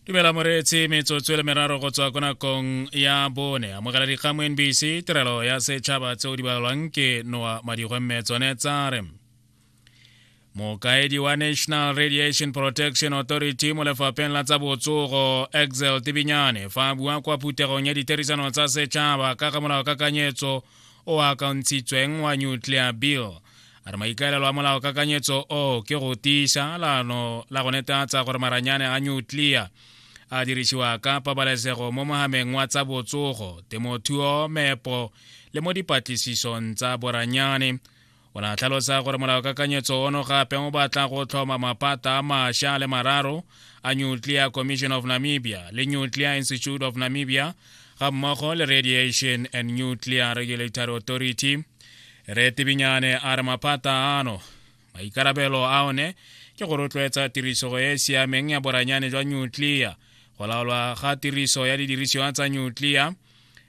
dumela moreetsi metsotso e le meraro go tswa ko nakong ya bone amogela dikgang mo nbc tirelo ya setšhaba tseo di balwang ke noa madigwe mme tsone tsa re mokaedi wa national radiation protection authority mo lefapheng la tsa botsogo exel tibinyane fa a bua kwa phuthegong ya ditherisano tsa setšhaba ka ga molao kakanyetso o akantshitsweng wa nuclear bill a re maikaelelo a molaokakanyetso o ke go tiisa lano la go netatsa gore maranyane a nuclear a dirisiwa ka pabalesego mo mohameng wa tsa botsogo temothuo mepo le mo dipatlisisong tsa boranyane o ne a tlhalosa gore molaokakanyetso ono gape o batla go tlhoma mapata a mašwa le mararo a nuclear commission of namibia le nuclear institute of namibia ga mmogo le radiation and nuclear regulatory authority retibinyane a re maphata ano maikarabelo a one ke go rotloetsa tirisogo e e siameng ya boranyane jwa nutlea go laolwa ga tiriso ya didirisiwa tsa nutlea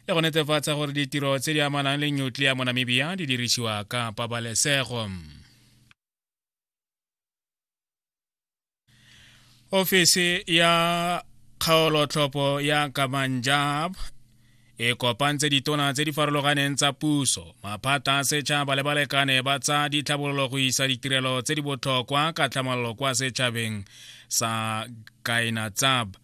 le go netefatsa gore ditiro tse di amanang le nutlea mo namibia di dirisiwa ka pabalesego ofisi ya kgaolotlhopo ya kamanjab e kopantse ditona tse di farologaneng tsa puso maphata a setšhaba le balekane ba tsa ditlhabololo go isa ditirelo tse di botlhokwa ka tlhamalolo kwa setšhabeng sa kainatsab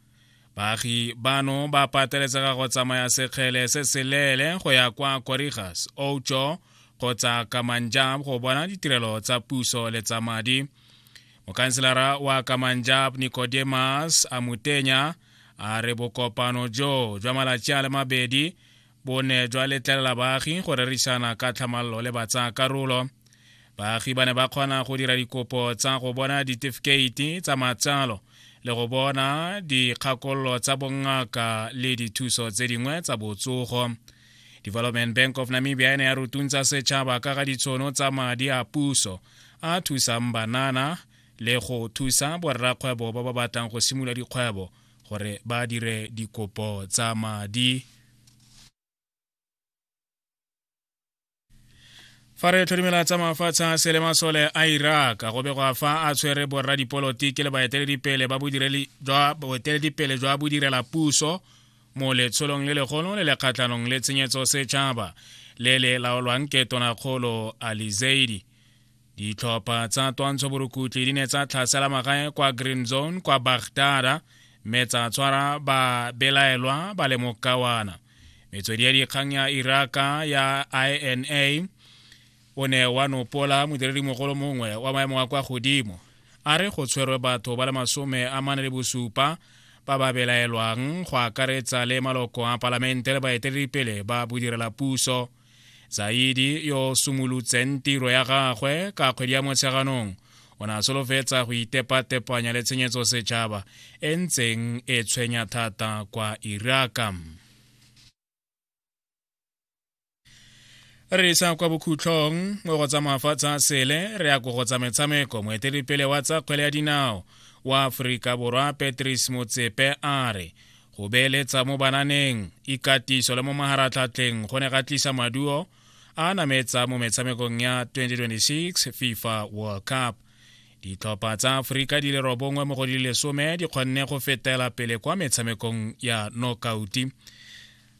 baagi bano ba pateletsega go tsamaya sekgele se seleele go ya kwa korigas ocho kgotsa kamanjab go bona ditirelo tsa puso le tsa madi mokhanselara wa kamanjab nicodemus amutenya a re bokopano jo jwa malatsi a le mabedi bo ne jwa letlelela baagi go rerisana ka tlhamallo le batsaa karolo baagi ba ne ba kgona go dira dikopo tsa go bona ditefikeiti tsa matsalo le go bona dikgakololo tsa bongaka le dithuso tse dingwe tsa botsogo development bank of namibia e ne ya rutuntsa setšhaba ka ga ditshono tsa madi a puso a thusang banana le go thusa borrakgwebo ba ba batlang go simolola dikgwebo gore ba dire dikopo tsa madi fa re tlhodimela tsa mafatshe a sele masole a iraq go begwa fa a tshwere borra dipolotiki le baeteledipele ba boeteledipele jwa bodirela puso mo letsholong le legolo le le kgatlhanong le tshenyetso setšhaba le le laolwang ke tonakgolo alizeidi ditlhopha tsa twantsho borukutlhi di ne tsa tlhasela magae kwa green zone kwa bagdara mme tsa tshwara babelaelwa ba le mokawana metswedi ya dikgang ya iraka ya ina o ne wa nopola modiredi mogolo mongwe wa maemo a kwa godimo a re go tshwerwe batho ba le masome a mane le bosupa ba ba belaelwang go akaretsa le maloko a palamente le baeteledipele ba bodirela puso zaidi yo sumulutseng tiro ya gagwe ka kgwedi ya motsheganong o ne a solofetsa go itepatepanya le tshenyetso setšhaba e ntseng e tshwenya thata kwa iraka re isa kwa bokhutlhong mo go tsa mafatshe a sele re ya ko go tsa metshameko moeteledipele wa tsa kgwele ya dinao wa aforika borwa patrice motsepe a re go beeletsa mo bananeng ikatiso le mo maharatlhatlheng go ne ga tlisa maduo a nametsa mo metshamekong ya 2026 fifa world cup ditlhopha tsa aforika di le robongwe mo go di lesome di kgonne go fetela pele kwa metshamekong ya nokauti